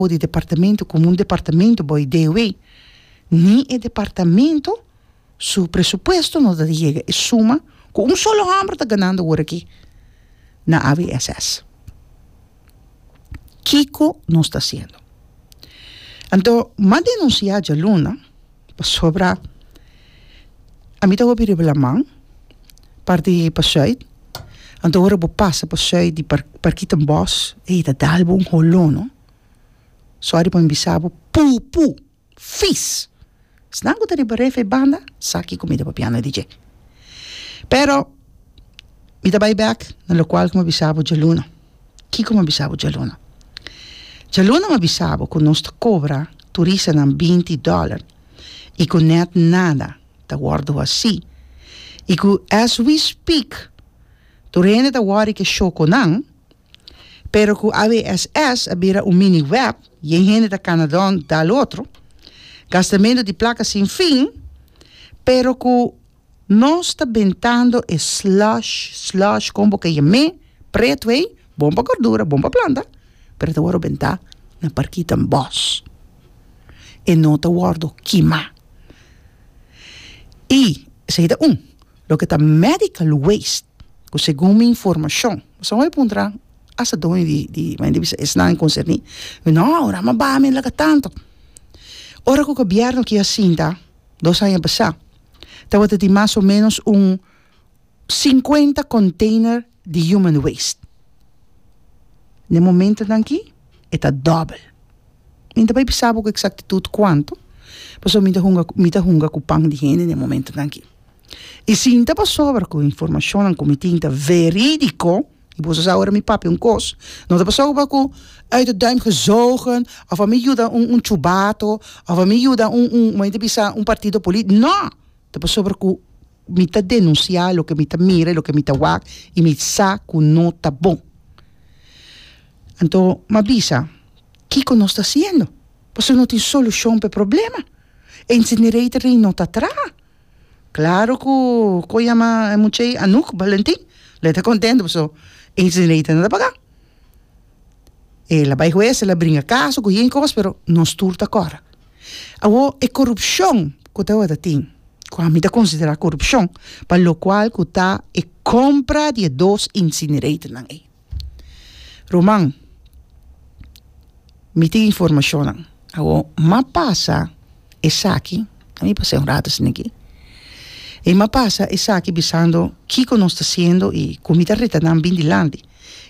o di departamento komo un departamento boi DW, ni e departamento su presupuesto no ta di yega e suma ku un solo hòmber ta ganando ora aki na AVSS. Kiko nos ta hasiendo? Anto m'a denunsiá djaluna. Pasobra ami ta hopi riba laman par di pasuit anto ora bo pasa pasuit di parkita en bos ey ta dal bo un holon no sorry pa mi bisa bo pupu fis esnan ku ta riba refri banda sa ki kumida papiana di dje pero mi ta bay bek na lokual ku mi a bisa bo djaluna. Kiko mi a bisa bo djaluna? Djaluna mi a bisa bo ku nos ta kobra turistanan binti dòler i ku nèt nada ta wòrdu hasí i ku as we speak tur hende ta wòri ke shokonan pero ku ABSS a bira un mini wèp yen hende ta kana dònt dal otro gastamentu di plaka sin fin pero ku Nos ta bentando e slush, slush, kon bo kaya me, pret wey, bon pa gordura, bon pa planta, pero ta wordo bentá na parkita en bos. E no ta wordo kimá. I esei ta un. Loke ta medical waste, ku segun mi informashon, pasobra mi a puntra hasta doño di, di, mi manda bisa esnan konserní, mi, no, Urama Bami laka tantu. Ora ku gobièrnu kia sinta dos aña pasá, tabata tin mas o ménos un sinkuenta kònteiner di human waste. Na e momentonan akí e ta dòbel. Mi no ta bai bisa bo ku eksaktitut kuantu, pasobra mi ta hunga mi ta hunga ku pan di hende na e momentonan akí. I si ta pasobra ku e informashonnan ku mi tin ta verídiko, I boso sa ora mi papia un kos, no ta pasá oba ku uit de duim gezogen òf a mi yuda un un chubato òf a mi yuda un un kòmo mi ta bisa un partido polítiko, nò! Ta pasobra ku mi ta denunsiá loke mi ta mira i loke mi ta wak i mi sa ku no ta bon. Anto m'a bisa kiko nos ta hasiendo, pasobra no tin solushon pa e problema. E incinerator ei no ta traha. Claro cu cu yama e mucha y Anouk Valentin lo ta contento pasobra ey dinerito no ta paga e la bay huez ela bringa caso cu yin cos pero nos tur ta cora awo e corupcion cu tabata tin cu ami ta considera corupcion pa locual cu ta e compra di e dos incinerator nan ey. Ruman, mi tin informashonnan. Awor, m'a pasa esaki, a mi pas'é un rato sin aki, i m'a pasa esaki bisando kiko nos ta hasiendo i ku mi ta reta nan bin dilanti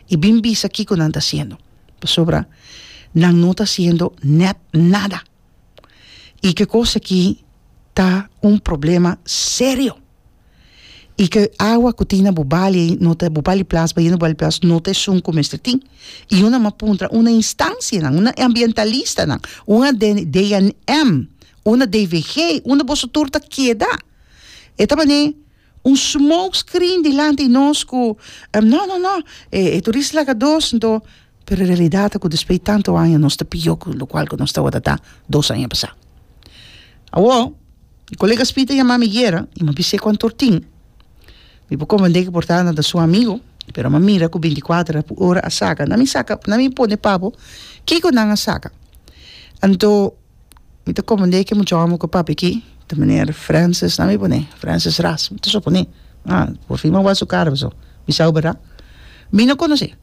i bin bisa kiko nan ta hasiendo, pasobra nan no ta hasiendo nèt nada. I ke kos aki ta un problema serio. y ke awa ku tin na bo bali ei no ta bo bali plas bay no bali plas no ta esun ku mester tin y yo nama puntra una instancianan una ambientalistanan una DNM una DVG unda boso tur ta keda e ta mane un smoke screen dilanti nos ku no no no e turista laga dos nto Pero e realidat ta ku despues di tantu aña nos ta pió ku lokual ku nos tabata ta dos aña pasá. Awó mi kolega Speed a yama mi yera i mi a bis'é ku antor tin. Mi por komprendé ku por ta nan ta su amigu, pero mi a mira ku binti kuater a por ora a saka. Na mi saka, na mi pone papo kiko nan a saka. Anto. Mi ta komand'é ki mucha hòmber ku papia aki, ta miner Francis, nan mi pone? Francis Ras, mi ta sopone, ah, por fin bo a wak su kara pasobra mi sa bo berda. Mi no konos'é.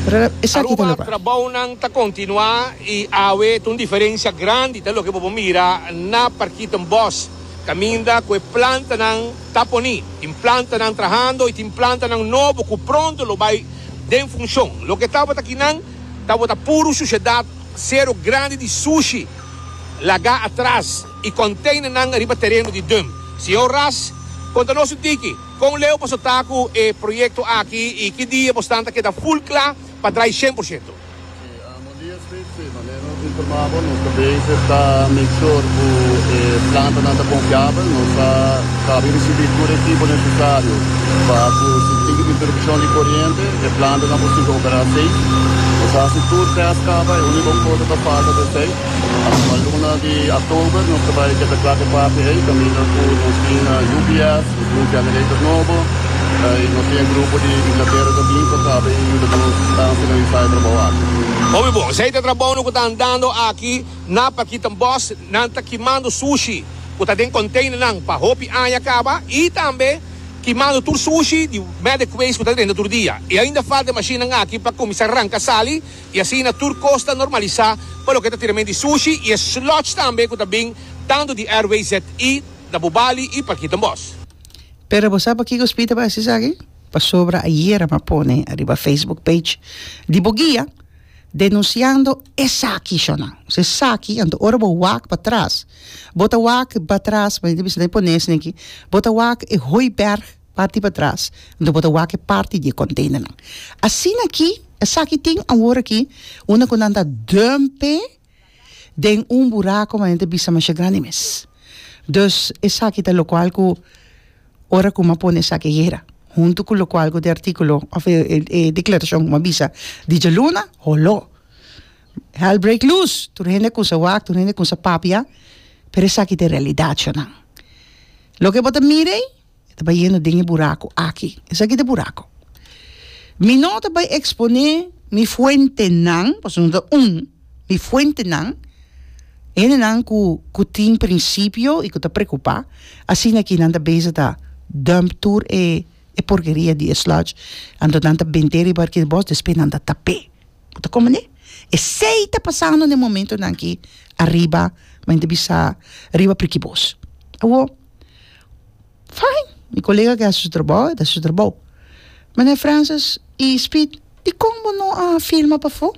Pero esaki ta loke. Trabounan ta kontinuá i awe ta un diferensia grandi, ta loke bo por mira na Parkitten Bos, kaminda ku e plantanan ta poni. Tin plantanan trahando i tin plantanan nobo ku pronto lo bai den funshon. Loke tabata kinan tabata puru sushedat. sero grandi di sushi lagá atras i konteinernan riba tereno di dump. Señor Ras, konta nos un tiki, kon leu bo so ta ku e proyekto aki i ki dia bo stan ta keda ful kla pa drai shen por shento? Si, amo dia sweet si, manera nos informá bo, nos ta bezig ta make sure ku e plantanan ta konfiabel, nos ta. Kabe risibí tur e tipo nesesario pa ku si tin interupshon di koriente e plantanan por sigui operá seis. Nos a hasi tur tèst kaba, e úniko kos a ta falta ta esei. Pa nan pa luna di oktober nos ta bai keda kla te parti ei kaminda ku nos tin UPS, nos tin un generator nobo i nos tin e grupo di Inglatera ta bin pa kabe i yuda nos tan finalisá e trabou aki. Omi bon, esei ta trabounan ku ta andando aki na Pakitan Bos. Nan ta kimando sushi. ku ta den konteinernan pa hopi aña kaba i tambe kimando tur sushi di Medic Waste ku ta renta tur dia. E ainda falta e mashinnan aki pa kuminsá ranka sali i asina tur kos ta normalisá pa loke ta tiramentu di sushi i e sludge tambe ku ta bin tantu di RWZ i na Bubali i Parkito Bos. Pero bo sa pakiko Speed ta bai esaki? Pasobra ayera mi a pone ariba Facebook page di bo guia. Denunciando esaki shownan. So esaki, anto ora bo wak patras, bo ta wak patras, bo ta bisa den pones den aki, bo ta wak e hooiberg parti patras, anto bo ta wak e parti di e containernan. Asina aki, esaki tin awor aki, unda cu nan ta dump e. den un buraco mas nan ta bisa masha grandi mes dus esaki ta locual cu ora cu mi a pone esaki a yera hunto cu locual cu e articulo of e declaracion cu mi a bisa di djaluna holo hell break loose tur hende a cusa wak tur hende a cusa papia pero esaki ta e realidad sho nan loke bo ta mira ey E ta bayendo den e buraco aki. Esaki ta e buraco. Mi no ta bay expone mi fuentenan, pasobra no ta un, mi fuentenan, hendenan cu, cu tin principio y cu ta preocupa, asina aki nan ta bezig ta dump tur e porkeria di e sludge, anto nan ta bente riba aki di bos, despues nan ta tape. Bo ta comprende? Esey ta pasando den e momentonan aki, ariba, men ta bisa, riba Prikibos. Awo. Fijn, mi colega ke hasi su trabou, e ta hasi su trabou. Meneer Francis y Speed, dikon bo no a firma pafó?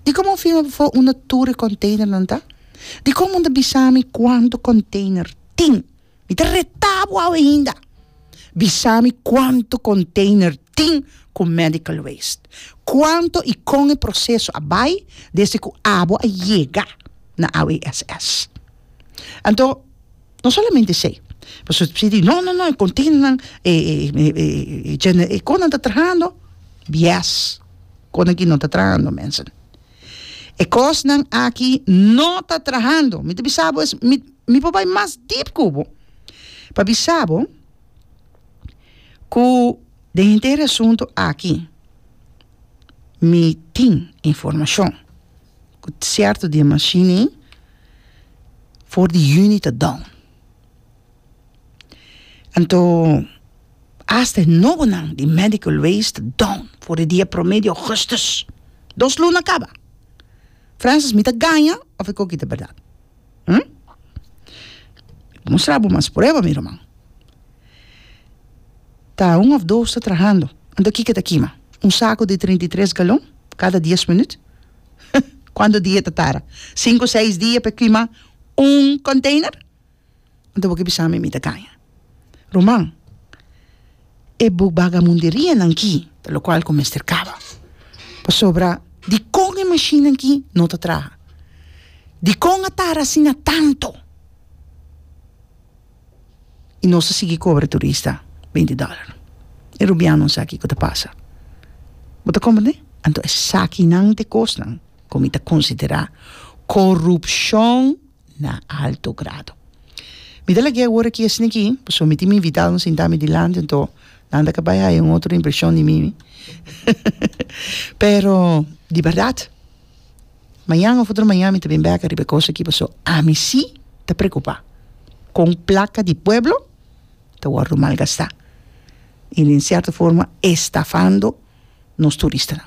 Dikon bo firma pafó unda tur e containernan ta? Dikon bo no ta bisa mi kuantu container tin? Mi ta retá bo awe hinda. Bisa mi kuantu container tin. tin ku medical waste. Kuantu i kon e proseso a bai desde ku abo a yega na AWSS? Anto no solamente esei, pasobra si di no no no e konteinernan e gener e konan ta trahando, bies konan aki no ta trahando mensen. E kosnan aki no ta trahando, mi ta bisa bo mi por bai mas deep ku bo pa bisa bo. cu den henter asunto aki mi tin informacion cu cierto di e mashini for di juni ta down. Anto hasta e nobonan di medical waste ta down for di dia prome di augustus. Dos luna caba. Francis, mi ta gaña of e coki ta berdad? Hm? Mustra bo mas prueba, mi ruman. Ta un of dos ta trahando. Anto kiko ta kima? Un saku di trinta i tres galon kada dies minut? Kuantu dia ta tara? Sinku seis dia pa e kima un konteiner? Anto bo ke bisa mi mi ta kaña? Ruman, e buk Bagamunderianan ki ta lokual ku mester kaba. Pasobra dikon e mashinnan ki no ta traha? Dikon a tara asina tantu? I nos a sigui kobra e turista beinti dòler. E rubian no sa kiko ta pasa. Bo ta komprendé? Anto esakinan ta e kosnan ku mi ta konsiderá korupshon. na alto grado. Mi ta lag'é awor aki asina aki, pasobra mi tin mi invitado na sinta mi dilanti, anto nan ta ka bai haya un otro impreshon di mi, pero di bèrdat, mañan òf otro mañan mi ta bin bèk riba e kos aki, pasobra ami sí ta preokupá kon plaka di pueblo ta wòrdu malgastá i den sierto forma estafando nos turistanan.